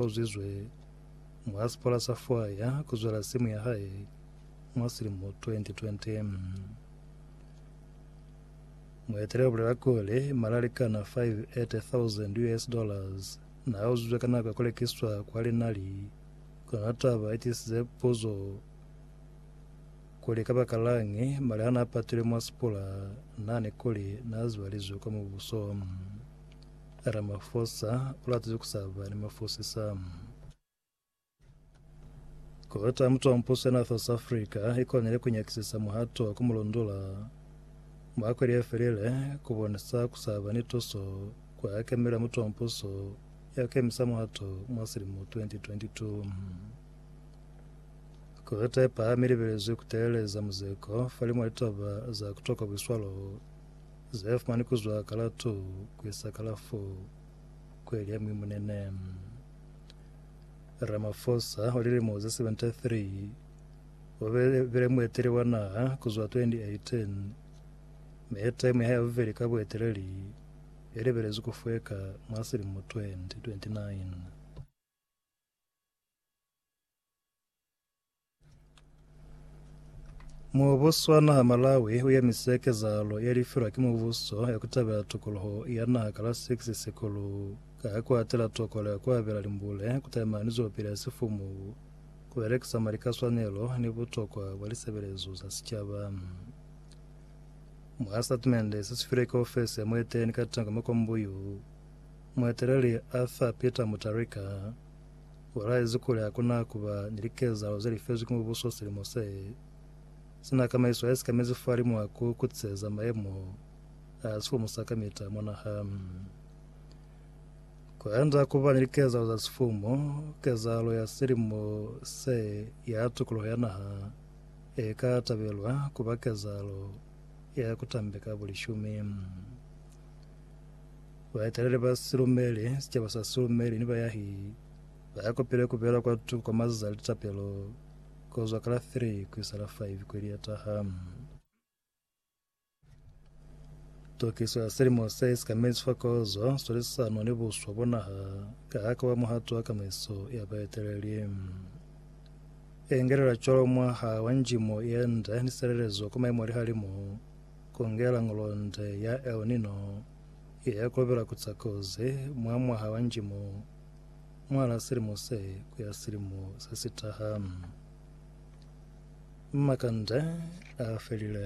U zwizwe mwa sipola sa fwaya ku zwela simu ya hae mwa silimo 2020. Mueteleli u bulela kuli, Malali kana 580,000 US dollars n'a uzizwe ka nako ya ku lekiswa kwa linali. Kona taba i tisize puzo kuli kabakalañi mali ha n'a patilwe mwa sipola nani kuli n'a zibalizwe kwa mubuso. Ramafosa ulatize kusaba ni mafosisa. Kota ya Mutuampuso ya North South Africa ikonile kunyakisisa muhato wa kumulondula mwa kweli yefelile kubonisa kusaba ni tuso kwa hakemelo ya Mutuampuso ya kukemisa muhato mwa silimo 2022. Kota yepahami ilibelezwi kuteeleza muzeko falimwa litoba za kutokwa buiswalo Zefumani kuzwa kala 2 kuisa kala 4 kuelya mwi munene. Ramaphosa wa lilimo ze 73 ubele bile mueteli wa naha kuzwa 2018 me taimu yahae ya bubeli ka bueteleli ilibelezwi kufweka mwa silimo 2029. Mubuso wa naha Malawi u emise kezahalo ye lifilwa ki mubuso ya ku tabela tokoloho ya naha ka la 6 Sikulu ka ku atela tokolo ya ku abela limbule ku taimani zwelopili ya sifumu, ku belekisa mali ka swanelo ni butokwa bwa lisebelezo za sicaba. Mwa sitatimende se si filwe ki ofesi ya mueteleli Katango Makombuyu, mueteleli Arthur Peter Mutharika U laezi kuli ha ku na ku ba ni likezahalo ze li fezwi ki Mubuso silimo se si na kamaiso ya sikamezi fahalimwa ha ku kutiseza mayemo a sifumu sa kamita mwa naha. Ku enda ku ba ni likezahalo za sifumu, kezahalo ya silimo se ya tukuluho ya naha e ka tabelwa ku ba kezahalo ya ku tambeka bulishumi. Baeteleli ba silumeli, sicaba sa silumeli, ni bayahi ba ya kopile ku bela kwa tuku kwa mazazi a litapelo ku zwa ka la 3 ku isa la 5 kweli ye taha. Tokiso ya Silimo se Isikamezi fa Kozo, Swalisisano ni Buswa bwa Naha Kahaka wa Muhato wa Kamaiso ya Baeteleli. Engelela cwalo mwaha wa njimo ye nde ni silelezo kwa maimo a lihalimu, ku ngela ngolonde ya El Nino Iya kobela ku za kozi mwa mwaha wa njimo mwal'a silimo se ku ya silimo se si taha. Makande a felile.